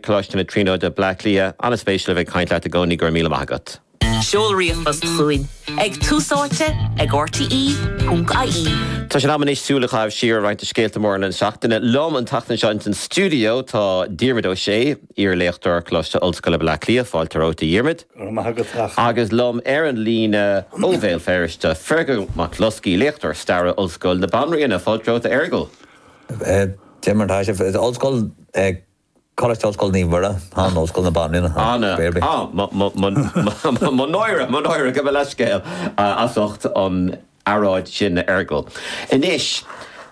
Coláiste na Tríonóide, Bleá Cliath. An-spéisiúil a bheith ag caint leat i gcónaí, go raibh míle maith agat. Seol ríomhphost chugainn ag túsáite ag rte.ie. Tá sé in am anois súil a chaitheamh siar ar roinnt de scéalta móra na seachtaine. Liom an tseachtain seo ins an stiúideo tá Diarmuid Ó Sé, iar-léachtóir, Coláiste Ollscoile Bhleá Cliath, fáilte romhat a Dhiarmuid. Go raibh maith agat, a Chonaill. Agus liom ar an líne ó Bhéal Feirste, Fearghal Mac Bhloscaidh, léachtóir staire, Ollscoil na Banríona, fáilte romhat a Fhearghail. Diarmuid, tá sé, ollscoil Coláiste Ollscoile Naomh Muire, An, Ollscoil na Banríona, An, Anna, Gael Bee. ah, mo, mo, mo, mo, mo náire, mo náire, gabh mo leithscéal as ucht an earráid sin, a Fhearghail. Anois,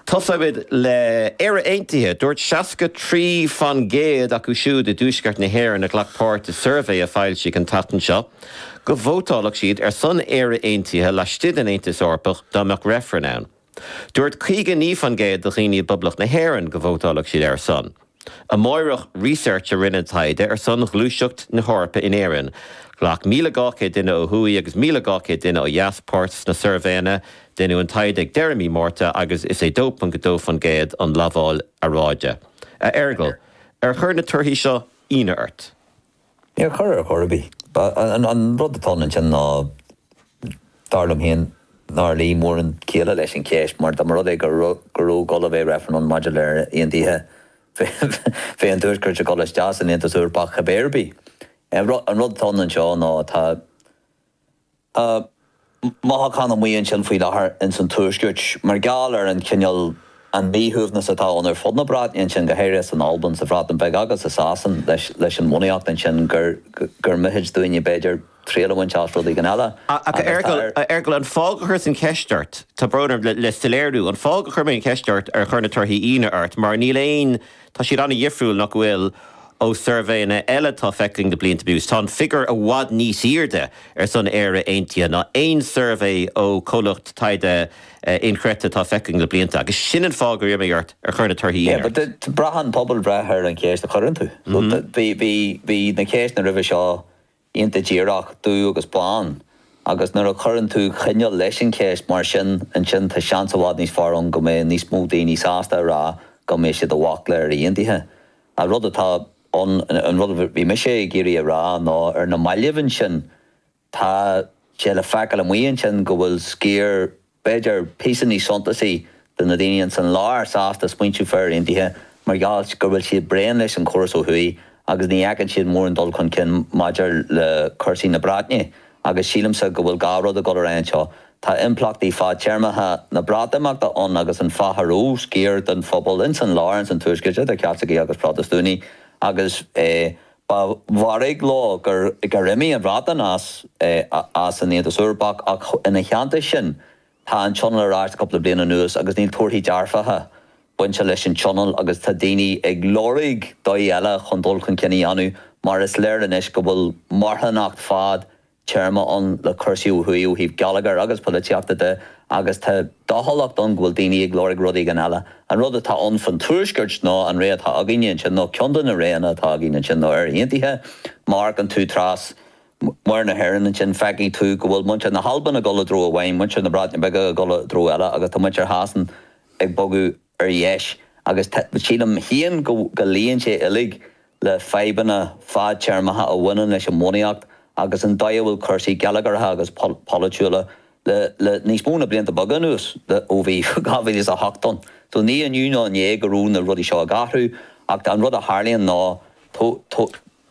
tosóimid le Éire Aontaithe. Dúirt seasca trí faoin gcéad acu siúd i dTuaisceart na hÉireann a ghlac páirt i suirbhé a foilsíodh an tseachtain seo go vótálfadh siad ar son Éire Aontaithe laistigh den Aontas Eorpach dá mbeadh reifreann ann. Dúirt 59% de dhaoine i bPoblacht na hÉireann go vótálfadh siad ar a son. Amárach Research a rinne an taighde ar son ghluaiseacht na hEorpa in Éirinn. Ghlac 1,200 duine ó thuaidh agus 1,200 duine ó dheas páirt sna suirbhéanna. Deineadh an taighde ag deireadh mí Márta agus is é 2.2% an lamháil earráide. A Fhearghail, ar chuir na torthaí seo ionadh ort? Níor chuir ar chor ar bith. An rud atá ann ansin ná, dar liom féin, nár luigh mórán céille leis an cheist, mar dá mba rud é go raibh dul a bheith reifreann maidir le Éire Aontaithe bheadh an Tuaisceart ag dul isteach san Aontas Eorpach cibé ar bith. An rud atá ann anseo ná tá. Tá mothúchán amuigh ansin faoi láthair ins an Tuaisceart mar gheall ar an chineál, an míshuaimhneas atá ann ar fud na Breataine ansin, go háirithe san Albain, sa Bhreatain Bhig agus i Sasain leis an mbunaíocht ansin gur, gur mithid dúinne b'fhéidir triail a bhaint as rud éigin eile. Ach a Fhearghail, a Fhearghail, an fáth gur chuireas an cheist ort, tá brón orm, le soiléiriú, an fáth gur chuir mé an cheist ort ar chuir na torthaí ionadh ort, mar níl aon, Tá siad an-dhifriúil, nach bhfuil? ó suirbhéanna eile atá feicthe againn le blianta anuas. Tá an figiúr i bhfad níos airde ar son Éire Aontaithe ná aon suirbhé ó chomhlacht taighde inchreidte atá feicthe againn le blianta. Agus sin an fáth gur iarr mé ort ar chuir na torthaí ionadh ort. Braitheann pobalbhreith ar an cheist a chuireann tú. Bhí na ceisteanna roimhe seo iontach díreach, dubh agus bán. Agus nuair a chuireann tú coinníoll leis an cheist mar sin, ansin tá seans i bhfad níos fearr ann go mbeidh níos mó daoine sásta a rá go mbeidh siad i bhfách le Éire Aontaithe. An rud atá ann, an rud a bhí mise ag iarraidh a rá, ná ar na mallaibh ansin, tá sé le feiceáil amuigh ansin go bhfuil sciar b'fhéidir, píosa níos suntasaí de na daoine ins an lár sásta smaointiú faoi Éire Aontaithe mar gheall go bhfuil siad bréan leis an chóras ó thuaidh agus ní fheiceann siad mórán dul chun cinn maidir le cúrsaí na Breataine agus sílimse go bhfuil dhá rud ag dul ar aghaidh anseo. Tá impleachtaí fadtéarmacha na Breatimeachta ann agus an fáth a raibh sciar den phobal ins an lár, ins an tuaisceart, idir Caitlicigh agus Protastúnaigh, agus Ba mhairg leo gur imigh an Bhreatain as an Aontas Eorpach, ach ina theannta sin, tá an tionól ar ais le cúpla bliain anuas agus níl torthaí dearfacha bainte leis an tionól agus tá daoine ag lorg dóigh eile chun dul chun cinn a dhéanamh mar is léir anois go bhfuil marthanacht fad téarma ann le cúrsaí ó thuaidh ó thaobh geilleagair agus polaitíochta de agus tá dóchúlacht ann go bhfuil daoine ag lorg rud éigin eile. An rud atá ann fán Tuaisceart ná an réiteach atá againne anseo, nó ceann de na roghanna atá againn anseo, ná Éire Aontaithe, má amharcann tú trasna Mhuir na hÉireann ansin feicfidh tú go bhfuil muintir na hAlban ag dul i dtreo amháin, muintir na Breataine Bige ag dul i dtreo eile agus tá muintir Shasana ag bogadh ar dheis, agus sílim féin go léiríonn sé uilig fadhbanna fadtéarmacha a bhaineann leis an mbunaíocht agus an dóigh a bhfuil cúrsaí geilleagartha agus polaitiúla le níos mó na blianta beaga anuas, ó bhí 2008 ann. So ní inniu ná inné go raibh na rudaí seo ag athrú, ach an rud a tharlaíonn ná,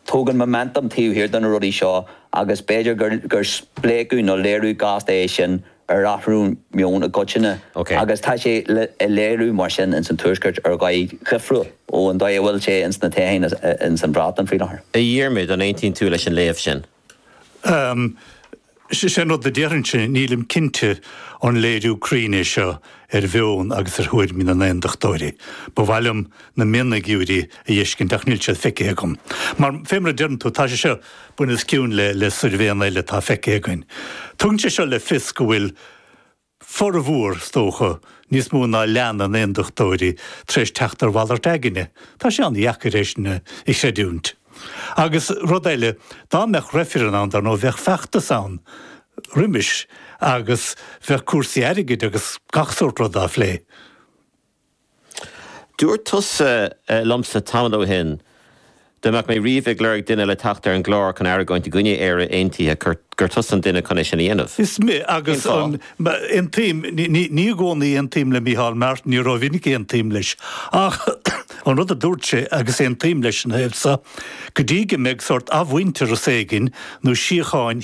tagann móiminteam taobh thiar de na rudaí seo agus b'fhéidir gur spléachadh nó léiriú gasta é sin ar athrú meoin i gcoitinne agus tá sé á léiriú mar sin ins an Tuaisceart ar dhóigh dhifriúil ón dóigh a bhfuil sé ins na tíortha ins an Bhreatain faoi láthair. A Dhiarmaid, an aontaíonn tú leis an léamh sin? Is é an rud a déarfainnse, nílim cinnte an léiriú cruinn é seo ar mheon agus ar thuairimí na nAontachtóirí. Ba mhaith liom na mionfhigiúirí a fheiscint ach níl siad feicithe agam. Mar, fé mar a deireann tú, tá sé seo bunoscionn le suirbhéanna eile atá feicithe againn. Tugann sé seo le fios go bhfuil formhór, is dócha, níos mó ná leath na nAontachtóirí tar éis teacht ar mhalairt aigne. Tá sé an-dheacair é sin a chreidiúint. Agus rud eile, dá mbeadh reifreann ann, dar ndóigh, bheadh feachtas ann roimis agus bheadh cúrsaí airgid agus gach sórt ruda á phlé. Dúirt tusa liomsa tamall ó shin dá mbeadh mé riamh ag lorg duine le teacht ar an gclár chun argóint i gcoinne Éire Aontaithe gur tusa an duine chun é sin a dhéanamh. Is mé, agus an, aontaím, ní i gcónaí a aontaím le Micheál Martin, ní rómhinic a aontaím leis, ach an rud a dúirt sé, agus aontaím leis ina thaobh seo, go dtí go mbeidh sórt athmhuintearas éigin nó síocháin